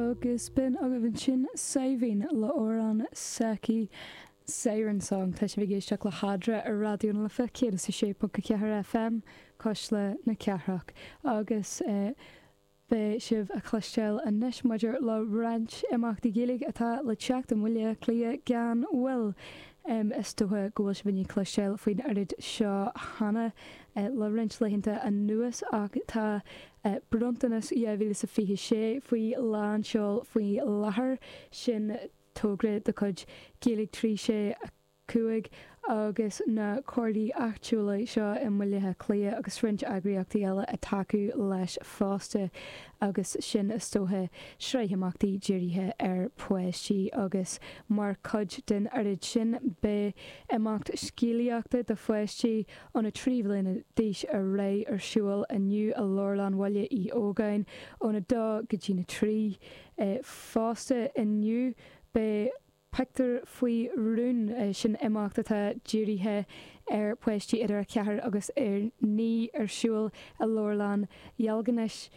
agus bhí agaibh ansin Saibhín le amhrán s'aicí Siren Song. Tá sibh ag éisteacht le Fadhb ar Raidió na Life 106.4 FM, Cuisle na Cathrach. Agus beidh sibh a cloisteáil anois maidir le roinnt imeachtaí Gaeilge atá le teacht i mBaile Átha Cliath gan mhoill. Is dócha go bhfuil sibh ag cloisteáil faoin oiread seo cheana le roinnt laethanta anuas ach tá Bronntanas 2026 faoi lánseol faoi láthair, sin togra de chuid Gaeilge 365 agus na Comhairlí Áitiúla seo i mBaile Átha Cliath agus roinnt eagraíochtaí eile ag tacú leis fosta, agus sin is dóiche, sraith imeachtaí dírithe ar pháistí agus mar chuid den oiread sin beidh imeacht scéalaíochta do pháistí, óna trí bliana d'aois ar aghaidh ar siúl inniu i Leabharlann Bhaile Uí Ógáin óna dó go dtí na trí. Fosta inniu beidh Pictiúr faoi Rún, sin imeacht atá dírithe ar pháistí idir 4 agus 9 ar siúl i Leabharlann Dheilginis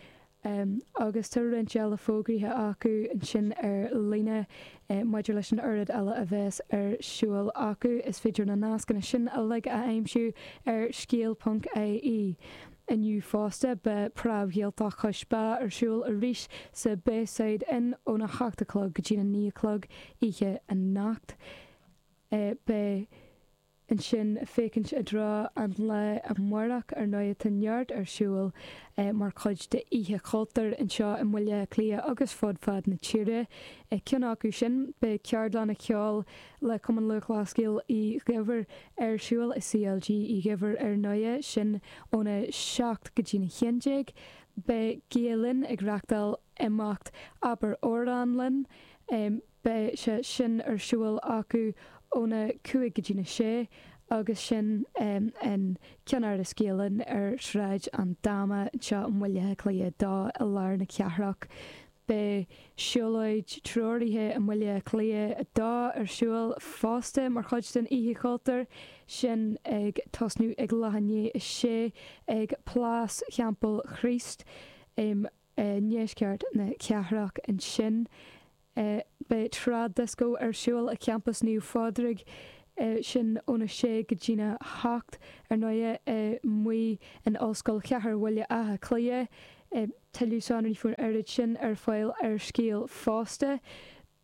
agus tá roinnt eile fógraithe acu ansin ar líne. Maidir leis an oiread eile a bheas ar siúl acu, is féidir na nascanna sin uilig a aimsiú ar scéal.ie. Inniu fosta, beidh Pop-Up Gaeltacht Chois Bá ar siúl arís sa Bayside Inn óna hocht a chlog go dtína naoi a chlog oíche anocht. Beidh. ansin féachaint i dtreo an lae amárach. Ar ndóigh, tá neart ar siúl mar chuid d'Oíche Chultúir anseo i mBaile Átha Cliath agus fud fad na tíre. Ceann acu sin, beidh ceardlanna ceoil le Cumann Lúthchleas Gael Uí Dhuibhir ar siúl i CLG Uí Dhuibhir ar ndóigh, sin óna 7 go dtína 11. Beidh Gael-Linn ag reachtáil imeacht 'Abair Amhrán Linn'. beidh sé sin ar siúl acu óna cúig go dtí na sé agus sin i gceannáras Gael Linn ar Shráid an Dáma anseo i mBaile Átha Cliath 2 i lár na cathrach. Beidh siúlóid treoraithe i mBaile Átha Cliath 2 ar siúl fosta mar chuid den Oíche Chultúir, sin ag tosnú ag leath i ndiaidh a sé ag Plás Theampall Chríost. i ndeisceart na cathrach. Ansin beidh Trad Disco ar siúl i gCampas Naomh Pádraig, sin óna 6 go dtína hocht ar ndóighe, amuigh in Ollscoil Chathair Bhaile Átha Cliath. Tuilleadh sonraí faoin oiread sin ar fáil ar scéal fosta.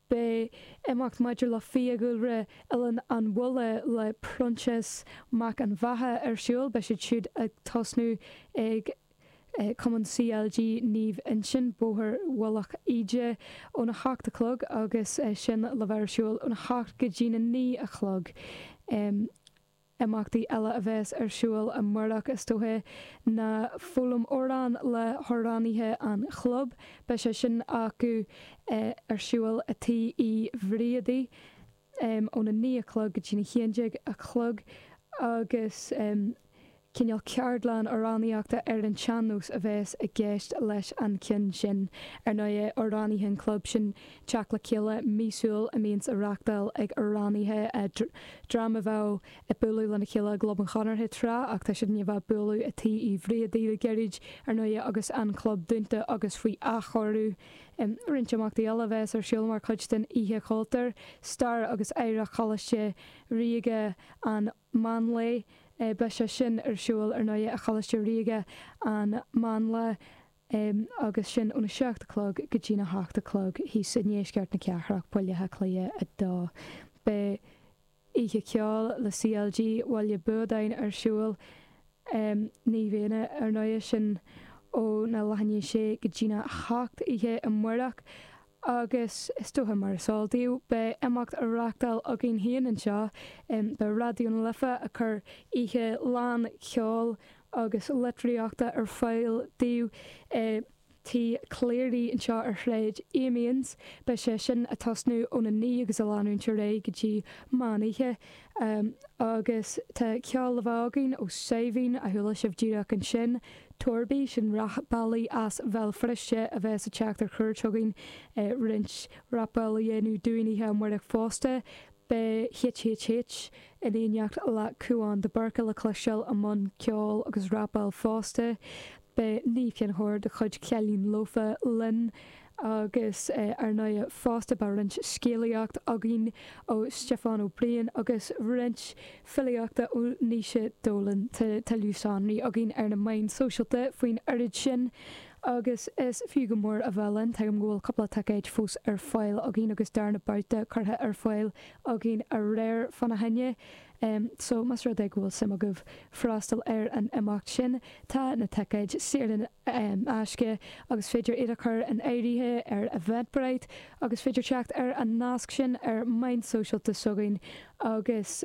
Beidh imeacht maidir le Fiadhúlra Oileán an Bhulla le Proinsias Mac an Bheatha ar siúl, beidh siad siúd ag tosnú ag Cumann CLG Naomh Uinseann, Bóthar Mhullach Íde óna hocht a chlog agus sin le bheith ar siúl óna hocht go dtína naoi a chlog. Imeachtaí eile a bheas ar siúl amárach, is dócha, ná foghlaim amhrán le hamhránaithe an chlub. Beidh sé sin acu ar siúl i dTigh Uí Bhriaidí óna naoi a chlog go dtína haon déag a chlog agus cineál ceardlann amhránaíochta ar an tsean-nós a bheas i gceist leis an gceann sin. Ar ndóigh, amhránaithe an chlub sin teacht le chéile míosúil a mbíonns á reachtáil ag amhránaithe, dream a bheadh ag bualadh lena chéile i gClub an Chonartha tráth ach tá siad i ndiaidh a bheith ag bualadh i dTigh Uí Bhriaidí le gairid, ar ndóighe, agus an Club dúnta agus faoi athchóiriú. Roinnt imeachtaí eile a bheas ar siúl mar chuid den Oíche Chultúir, Stair agus Oidhreacht Choláiste Ríoga na Máinleá. Beidh sé sin ar siúl, ar ndóighe, i gColáiste Ríoga na Máinleá. Em, agus sin ó na seacht a chlog go dtí na hocht a chlog thíos i ndeisceart na cathrach, Baile Átha Cliath 2. Beidh Oíche Ceoil le CLG Bhaile Buadáin ar siúl, em, i mbliana ar ndóighe, sin ó na leath i ndiaidh sé go dtí na hocht oíche amárach, agus is dócha, mar is eol daoibh, beidh imeacht á reachtáil againn féin anseo i Raidió na Life a chur oíche lán cheoil agus litríochta ar fáil daoibh i dTigh Cleary anseo ar Shráid Amiens. Beidh sé sin ag tosnú óna naoi agus ag leanúint ar aghaidh go dtí meán oíche. Um agus tá ceol le bheith againn ó Saidhbhín, a chuala sibh díreach ansin, Torby, sin rapálaí as Béal Feirste a bheas ag teacht ar chuairt chugainn, roinnt rapáil a dhéanamh dúinn oíche amáireach fosta. Beidh HHH in éineacht le Cúán de Búrca le cloisteáil i mbun ceoil agus rapáil fosta. Beidh Niamh Ní Chonchubhair de chuid Cailín Lofa linn, agus ar ndóighe fosta beidh roinnt scéalaíocht againn ó Stiofán Ó Briain agus roinnt filíochta ó Naoise Dolan. Tá tuilleadh sonraí againn ar na meáin sóisialta faoin oiread sin agus is fiú go mór a bheith linn. Tuigim go bhfuil cúpla ticéid fós ar fáil againn agus darna beart curtha ar fáil againn aréir fána choinne. Um so, más rud é go bhfuil suim agaibh freastal ar an imeacht sin, tá na ticéid saor in aisce agus is féidir iad a chur in áirithe ar Eventbrite agus is féidir teacht ar an nasc sin ar mheáin sóisialta s'againn agus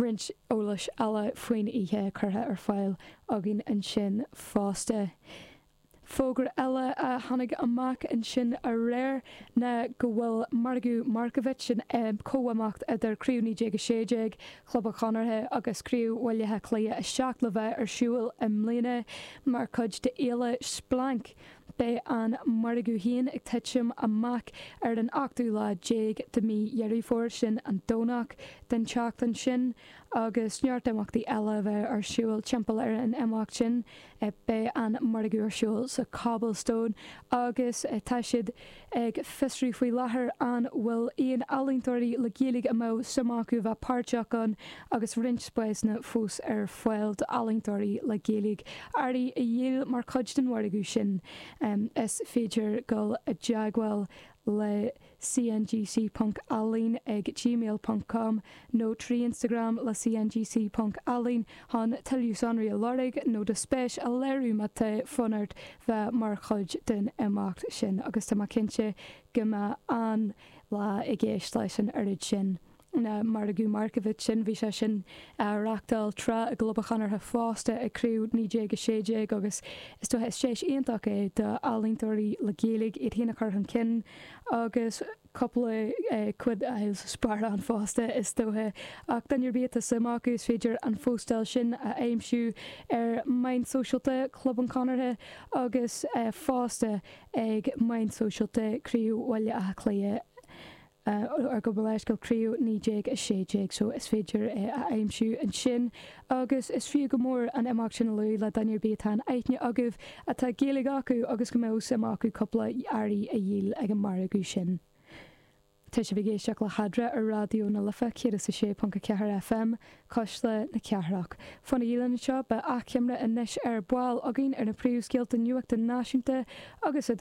roinnt eolais eile faoin oíche curtha ar fáil againn ansin fosta. Fógra eile a tháinig amach ansin aréir ná go bhfuil margadh Markievicz, an chomhimeacht idir Craobh 1916 Chlub an Chonartha agus Craobh Bhaile Átha Cliath 7, le bheith ar siúl i mbliana mar chuid de Fhéile Splanc. Beidh an margadh féin ag titim amach ar an ochtú lá déag de mhí Dheireadh Fómhair, sin an Domhnach den tseachtain sin, agus neart imeachtaí eile a bheidh ar siúl timpeall ar an imeacht sin. Beidh an margadh ar siúl sa Cobblestone agus tá siad ag fiosrú faoi láthair an bhfuil aon ealaíontóirí le Gaeilge a mbeadh suim acu bheith páirteach ann agus roinnt spásanna fós ar fáil d'ealaíontóirí le Gaeilge earraí a dhíol mar chuid den mhargadh sin. Is féidir dul i dteagmháil le CNGC Ponc Ealaín ag gmail ponc com nó trí Instagram le CNGC Ponc Ealaín chun tuilleadh sonraí a lorg nó do spéis a léiriú má tá fonn ort bheith mar chuid den imeacht sin agus tá mé cinnte go mbeidh an-lá i gceist leis an oiread sin An Margadh Markievicz sin, bhí sé sin á reachtáil tráth i gClub an Chonartha fosta, ag Craobh 1916, agus is dócha is deis iontach é d'ealaíontóirí le Gaeilge iad féin a chur chun cinn agus cúpla quid a fháil sa sparán fosta, is dócha, ach duine ar bith atá suim acu, is féidir an phóstáil sin a aimsiú ar mheáin sóisialta Chlub an Chonartha agus fosta ag meáin sóisialta Chraobh Bhaile Átha Cliath. a ar gabh mo leithscéal, Craobh 1916 so is féidir é a aimsiú ansin agus is fiú go mór an imeacht sin a luadh le duine ar bith atá in aithne agaibh atá Gaeilge acu agus go mbeadh suim acu cúpla earraí a dhíol ag an margadh sin. Tá sibh ag éisteacht le hEadra ar Raidió na Life 106.4 FM, Cuisle na Cathrach. Fanaigí linn anseo, beidh achoimre anois ar ball againn ar na príomhscéalta nuachta náisiúnta agus